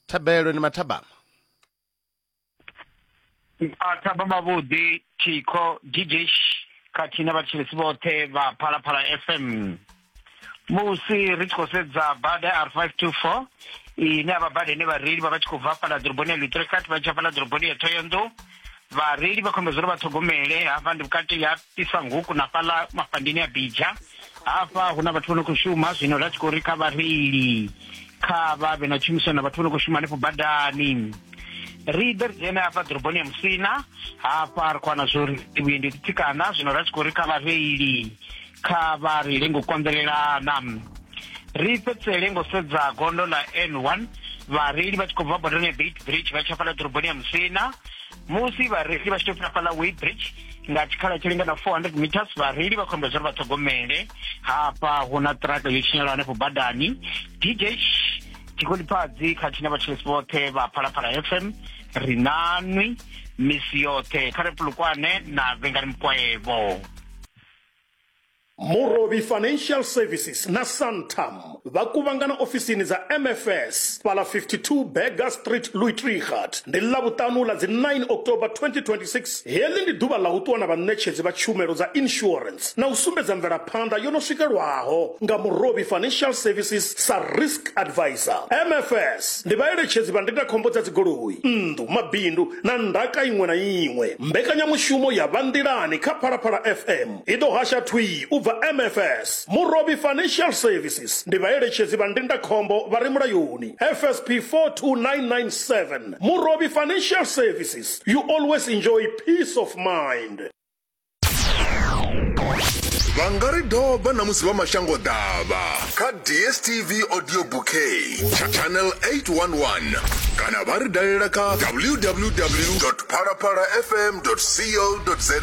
thabelo ni mathabama mathabama vhuḓi thikho gigish khathihi na vhathetshelesi vhoṱhe vha phalaphala fm musi ri tshi khou sedza bada r 524 ine avha bada ine vhareili vha vha tshi khou bva fhala ḓoroboni ya lutrekathi vha tshi ya fhala ḓoroboni ya thoyonḓou Vhareili vha khombedzo uri vha ṱhogomele hafha ndi vhukati ha Pisanguku na fhaḽa mafhandeni a Bidja. Hafha hu na vhathu vho no khou shuma zwino ra tshi khou ri kha vhareili kha vha vhe na tshumisano na vhathu vho no khou shuma hanefho badani. Ri ḓe ri dzhene hafha ḓoroboni ya Musina hafha ri khou wana zwo ri vhuendi ho ḓitsikana zwino ra tshi khou ri kha vhareili kha vha ri lingo konḓelelana ri fhedzisele ngo sedza gondo ḽa n1 vhareili vha tshi khou bva bodoni ya bait bridge vha tsha fhala ḓoroboni ya musina musi vhareili vha tshi tou fhira fhala way bridge nga tshikhala tshi lingana 400 meters vhareili vha khou ambela zwauri vha ṱhogomele hafha hu na ṱiraka yo tshinyala hanefho badani dj tshikolipfadzi khathihi na vhatshelesi vhoṱhe vha phalaphala fm ri nanwi misi yoṱhe kha ri pulukwane na vhengani mukwaevo Murovhi Financial Services na Santam vha kuvhangana ofisini dza MFS fhaḽa 52 Burger Street Luitrigard ndi Ḽavhuṱanu ḽa dzi 9 October 2026. Heḽi ndi ḓuvha ḽa u ṱuwa na vhaṋetshedzi vha tshumelo dza insurance na u sumbedza mvelaphanḓa yo no swikelwaho nga Murovhi Financial Services sa Risk Advisor. MFS Ndi vhaeletshedzi vha ndindakhombo dza dzigoloi, nnḓu, mabindu na ndaka iṅwe na iṅwe. Mbekanyamushumo ya Vha Nḓilani kha Phalaphala FM i ḓo hasha thwii u bva MFS. Murovhi Financial Services ndi vhaeletshedzi vha ndindakhombo vha re mulayoni, FSP 42997. Murovhi Financial Services, you always enjoy peace of mind. vha nga ri doba na musi vha mashango ḓavha kha dstv audio bouquet tsha channel 811 kana vha ri dalela kha www phalaphalafm co za